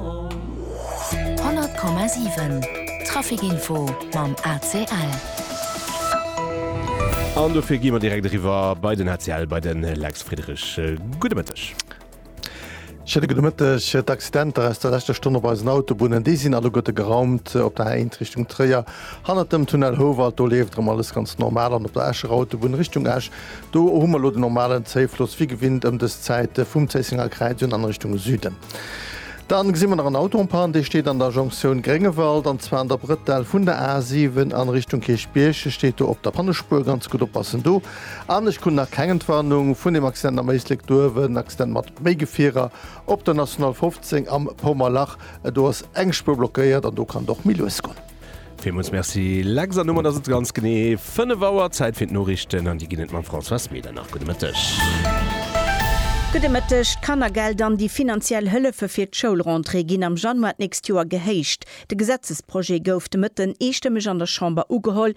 100,7 Trafic Info mam ACL. An dofir gi mer direkt eriwwer bei den ACL, bei de Lex Friederich. Gudde Mëtteg. Schéine gudde Mëtteg. D'Accidenter aus der leschter Stonn op eisen Autobunnen, déi sinn alleguerte geraumt. Op der A1 Richtung Tréier, hannert dem Tunnel Houwald, do leeft erëm alles ganz normal an op der Escher Autobunn Richtung Esch, Do hu mer elo den normalen Zéifloss wéi gewinnt ëm dës Zäit vum Zéissenger Kräiz un an Richtung Süden. Dann gesi mer nach en Auto en panne, dee steet an der Jonktioun Gréngewald an zwar an der Brëttel vun der A 7 an Richtung Kierchbierg. E steet do op der Pannespuer, ganz gutt oppassen do. An ech krun nach keng Entwarnung vun deem Accident am Éislek duerwen, Accident mat méi Gefierer op der National 15 am Paumerlach. Do ass eng Spuer blockéiert an do kann et och méi lues goen. Villmools Merci Lex an domat ass et ganz genee 5 Auer, Zäit fir d'Noriichten an déi ginn et mam Françoise Medernach. Gudde Mëtteg. Gudde Mëtteg. D'Kannergeld an déi finanziell Hëllefe fir d'Schoulrentrée ginn am Januar d'nächst Joer gehéicht. De Gesetzesprojet gouf de Mëtten eestëmmeg an der Chamber ugeholl.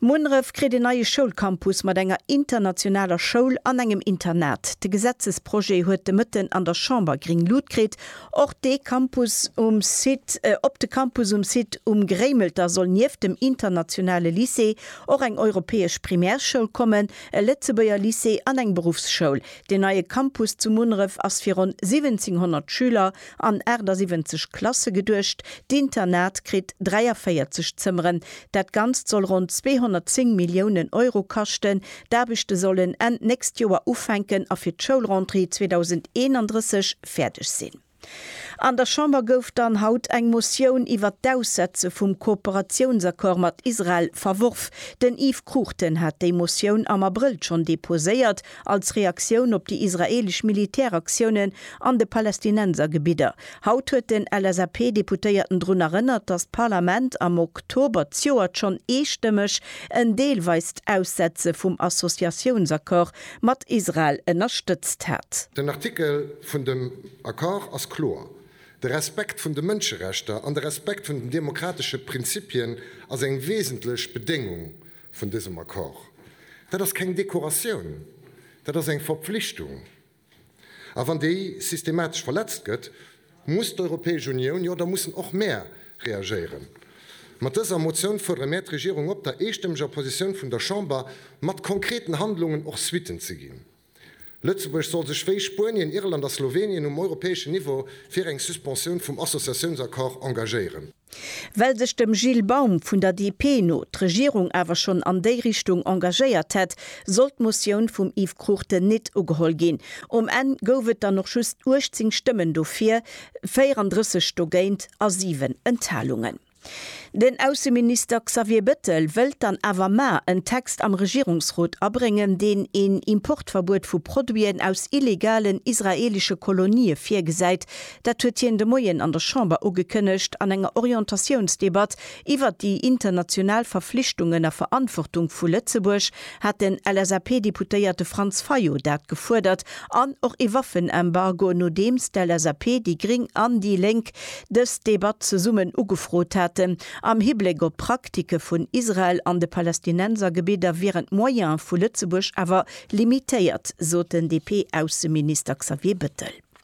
Munneref kritt een neie Schoulcampus mat enger internationaler Schoul an engem Internat. De Gesetzesprojet huet de Mëtten an der Chamber gring Lut kritt. Och de Campus um Site Op de Campus um Site Um Gréimelter soll nieft dem internationale Lycée och eng europäesch Primärschoul kommen, e Lëtzebuerger Lycée an eng Beruffsschoul. Den neie Campus zu Munneref ass fir ronn 1700 Schüler an 78 Klasse geduecht. D'Internat kritt 43 Zëmmeren. Dat Ganzt soll ronn 210 Milliounen Euro kaschten. D'Aarbechte sollen Enn d'nächst Joer ufänken a fir d'Schoulrentrée 2031 fäerdeg sinn. An der Chamber gouf dann haut eng Motioun iwwert d'Aussetze vum Kooperatiounsaccord mat Israel verworf. Den Yves Cruchten hat déi Motioun am Abrëll schonn deposéiert. als Reaktioun op déi israeelesch Militäraktiounen an de Palästinensergebidder. Haut huet den LSAP-Deputéierten drun erënnert, datt d'Parlament am Oktober d'Joert schonn eestëmmeg en deelweist Aussetze vum Associatiounsaccord mat Israel ënnerstëtzt hat. Den Artikel vun dem Accord ass kloer, De Respekt vun de Mënscherechter an de Respekt vun den demokratesche Prinzipien ass eng wesentlech Bedéngung vun dësem Accord. Dat ass keng Dekoratioun, dat ass eng Verpflichtung. A wann déi systematesch verletzt gëtt, muss d'Europäesch Unioun, jo da mussen och mär reagéieren. Mat dëser Motioun fuerdere mär d'Regierung op, der eestëmmeger Positioun vun der Chamber mat konkreten Handlungen och Suitten ze ginn. Lëtzebuerg soll sech wéi Spuenien, Irland a Slowenien um europäeschen Niveau fir eng Suspensioun vum Associatiounsaccord engagéieren. Well sech dem Gilles Baum vun der DP no d'Regierung awer schonn an déi Richtung engagéiert hätt, sollt d'Motioun vum Yves Cruchten nit ugeholl ginn. Um Enn gouf et dann och just 18 Stëmmen dofir, 34 dogéint a 7 Enthalungen. Den Ausseminister Xavier Bettel wëllt dann awer mar en Text am Regierungsrot abréngen, deen een Importverbuet vu Produiten aus illegalen israeelesche Kolonië virgesäit. Dat huet hien de Moien an der Chamber ugekënnegt an enger Orientatiounsdebatt iwwert déi international Verflichtungen a Verantwortung vu Lëtzebuerg hat den LSAP-Deputéierte Franz Fayot dat gefuerdert, an och ee Waffenembargo, nodeems d'LSAP, déi Gring an déi Lénk dës Debatt zesummen ugefrot haten. Am Hibléck op d'Praktike vun Israel an de Palästinensergebidder wieren d'Moyene vu Lëtzebuerg awer limitéiert, sot den DP-Ausseminister Xavier Bettel.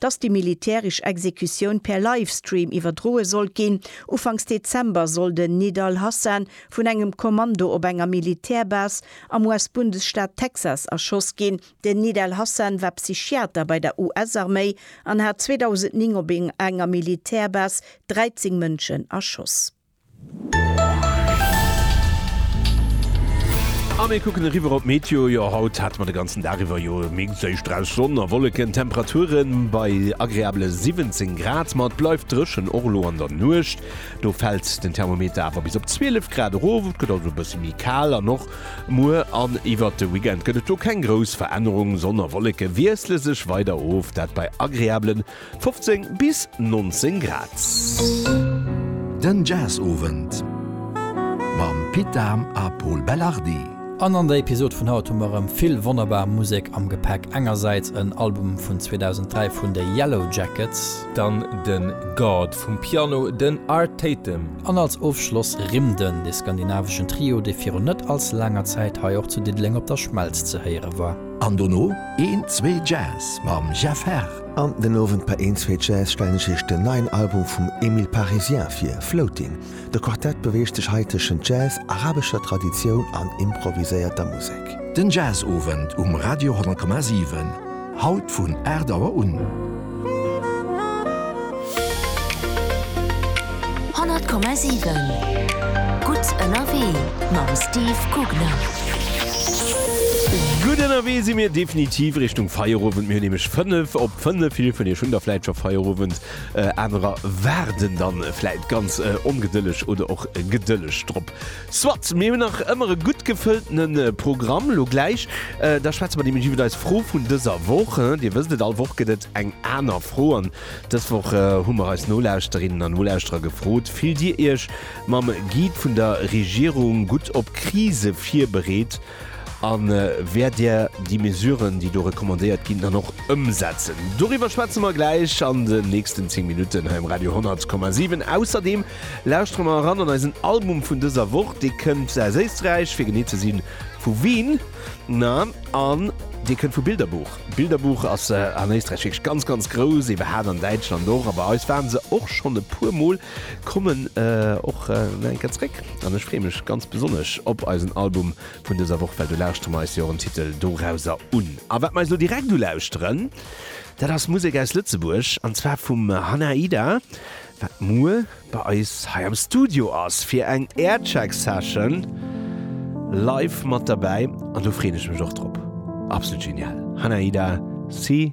dass déi militärisch Exekutioun per Livestream iwwerdroe sollt ginn. Ufanks Dezember soll den Nidal Hasan vun engem Kommando op enger Militärbase am US-Bundesstaat Texas erschoss ginn. Den Nidal Hasan war Psychiater bei der US-Arméi an hat 2009 op enger Militärbase 13 Mënschen erschoss. A mir kucken eriwwer op d'Meteo. Jo, haut hate mer de ganzen Dag iwwer jo mixed éischt drauss Sonn a Wolleken. D'Temperature bei agreabele 17 Grad, ma et bleift dréchen, och elo an der Nuecht. Do fält den Thermometer awer bis op 12 Grad erof. Et gëtt also e bësse méi kal an och muer an iwwert de Weekend gëtt et do keng grouss Verännerung. Sonn a Wolleke wiessle sech weider of, dat bei agreabelen 15 bis 19 Grad. Den Jazzowend mam Pit Dahm a Pol Belardi. An an der Episod vun haut hu mer erëm vill wonnerbar Musek am Gepäck. Engersäits en Album vun 2003 vun de Yellowjackets. Dann de God vum Piano, den Art Tatum. An als Ofschloss Rimden, de skandinaveschen Trio, dee virun net all ze laanger Zäit hei och zu Diddeleng op der Schmelz ze héiere war. An dono een, zwee Jazz mam Jeff Herr. An den Owend bei Een Zweet Jazz stellen ech Iech den neien Album vum Emile Parisien vir, Floating. De Quartett beweegt sech hei tëschent Jazz, arabescher Traditioun an improviséierter Musek. Den Jazzowend um Radio 10,7, haut vun 8 Auer un. 100,7 Gutt ënnerwee mam Steve Gugner. Gutt ënnerwee si mir definitiv Richtung Feierowend. Mir hunn nämlech 5 op 5. Vill vun iech hunn da vläit scho Feierowend, anerer waarden da vläit ganz ongedëlleg oder och gedëlleg drop. Soit, mir hunn nach ëmmer e gutt gefëlltene Programm. Elo gläich da schwätze mer nämlech iwwer eis Fro vun dëser Woch. Dir wësst et, all Woch gëtt et eng aner Fro. Dës Woch hu mer eis Nolauschterinnen an Nolauschterer gefrot, Fillt Dir Iech mam Guide vun der Regierung gutt op Krise virbereet a wäert Dir déi Mesuren, déi do recommandéiert ginn, dann och ëmsetzen? Doriwwer schwätze mer gläich an den nächsten 10 Minutten hei um Radio 10,7. Ausserdeem lauschtere mer eran an eisen Album vun dëser Woch. Dee kënnt aus Éisträich, fir genee ze sinn, vu Wien, na, an dee kënnt vu Bilderbuch. D'Bilderbuch ass an Éisträich wierklech ganz ganz grouss, ebe hat an Däitschland och, a bei eis waren se och schonn e puer Mol, kommen och nach eng Kéier zréck an ech freeë mech ganz besonnesch op eisen Album vun dëser Woch, well do lauschtere mer eis jo erëm Titel dorauser un. A wat mer eis elo direkt ulauschteren, dat ass Musek aus Lëtzebuerg, an zwar vum Hannah Ida, wat muer bei eis hei am Studio ass fir eng Aircheck Session live mat derbäi an do freen ech mech och drop. Absolut genial Hanaida, si.